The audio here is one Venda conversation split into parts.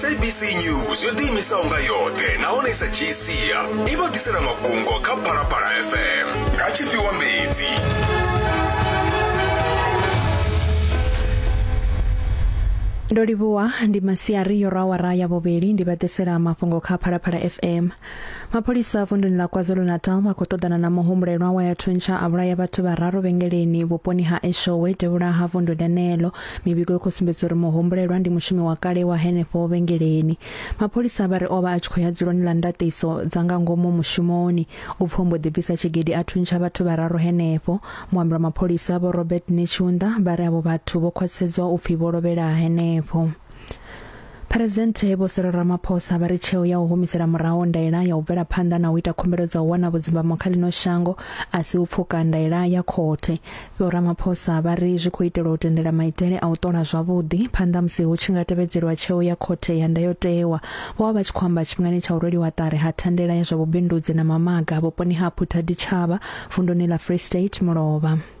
sabc news yo ḓiimisaho nga yoṱhe nahone i sa dzhii sia i vha ḓisela mafhungo kha phalaphala fm nga tshifhiwa mbedzi ndo livhuwa ndi masiari yo rwa awara ya vhuvhili ndi vha ḓisela mafhungo kha phalaphala fm mapholisa vunduni ḽa kwazulu-natal vha khou ṱoḓana na muhumbulelwa wa ya thuntsha a vhulaya vhathu vhararu vhengeleni vhuponi ha eshowe devhula ha vundu ḽeneḽo mivhigo i khou sumbedza uri muhumbulelwa ndi mushumi wa kale wa henefho vhengeleni mapholisa vha ri o vha a tshi khou ya dzuloni ḽa ndaṱiso dza nga ngomu mushumoni u pfo mbo ḓi bvisa tshigidi a thuntsha vhathu vhararu henefho muambi wa mapholisa vho robert netshiunda vha ri avho vhathu vho khwaṱhisedzwa u pfi vho lovhela henefho Phresidennde Vho Cyril Ramaphosa vha ri tsheo ya u humisela muraho ndaela ya u bvela phanḓa na u ita khumbelo dza u wana vhudzimbamo kha ḽino shango a si u pfuka ndaela ya khothe. Vho Ramaphosa vha ri zwi khou itelwa u tendela maitele a u ṱola zwavhuḓi phanḓa musi hu tshi nga tevhedzelwa tsheo ya khothe ya ndayotewa. Vho vha vha tshi khou amba tshifhingani tsha u rweliwa ṱari ha thandela ya zwa vhubindudzi na mamaga vhuponi ha Phuthaditjhaba, vunduni ḽa Free State Mulovha.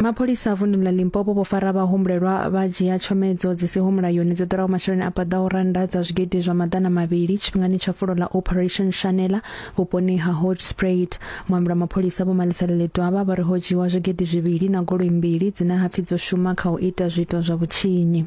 mapholisa a vunḓu la limpopo vho fara vhahumbulelwa vha dzhia tshomedzo dzi siho mulayoni dzi ḓuraho masheleni a paḓaho rannda dza zwigidi zwa maḓana mavhili tshifhingani tsha fulo ḽa operation shanela vhuponi ha hodge sprayed muambi wa mapholisa vho malisela ḽidwavha vha ri ho dzhiwa zwigidi zwivhili na goloi mbili dzine hapfi dzo shuma kha u ita zwiito zwa vhutshinyi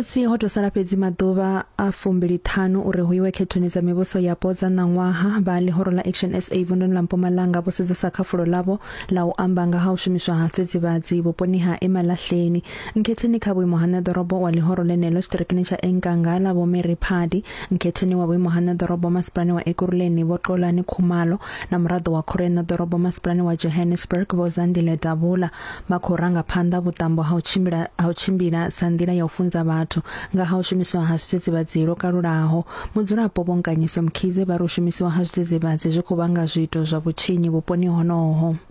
musi ho tou sala fhedzi maḓuvha a fumbiliṱhanu uri hu iwe khethoni dza mivhuso yapo dza ṋaṅwaha vha ḽihoro la action sa vunduni ḽa mpumalanga vho sedzesa kha fulo ḽavho ḽa u amba nga ha u shumiswa ha tsedzivhadzi vhuponi ha emalahleni nkhetheni kha vhuimo ha nṋeḓorobo wa ḽihoro ḽenelo tshiṱirikini tsha enkanga ḽa vho mary phadi Mukhetheni wa vhuimo ha ṋeḓorobo masipalani wa Ekurhuleni Vho Xolani Khumalo na muraḓo wa khoro ya ṋeḓorobo masipalani wa Johannesburg Vho Zandile Davula vha khou ranga phanḓa vhuṱambo ha u tshimbila ha u tshimbila sa nḓila ya u funza vhathu nga ha u shumiswa ha zwidzidzivhadzi lwo kalulaho. Mudzulapo Vho Nkanyiso Mkhize vha ri u shumisiwa ha zwidzidzivhadzi zwi khou vhanga zwiito zwa vhutshinyi vhuponi honoho.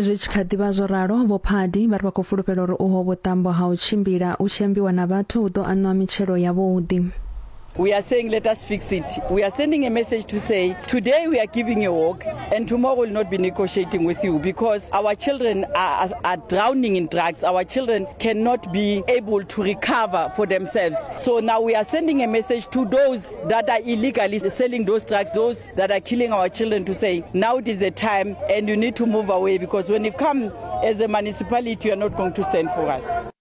zwi tshi kha ḓivha zwo ralo vho phadi vha ri vha khou fulufhela uri uho vhuṱambo ha u tshimbila u tshi ambiwa na vhathu hu ḓo aṋwa mitshelo yavhuḓi We are saying, let us fix it. We are sending a message to say, today we are giving a walk, and tomorrow we'll not be negotiating with you because our children are, are, are drowning in drugs. Our children cannot be able to recover for themselves. So now we are sending a message to those that are illegally selling those drugs, those that are killing our children to say now it is the time and you need to move away because when you come as a municipality you are not going to stand for us.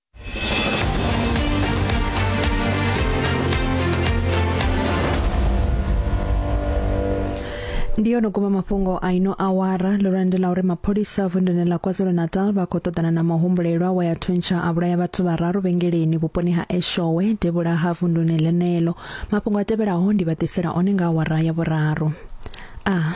ndiyo no guma mafhungo a ino awara ḽo landela uri mapholisa vunduni ḽa kwazulu-natal vha khou ṱoḓana na mahumbulelwa wa ya thuntsha a vhulaya vhathu vhararu vhengeleni vhuponi ha eshowe devhula ha vunduni ḽeneḽo Mafhungo a tevhelaho ndi vha ḓisela one nga awara ya vhuraru. A.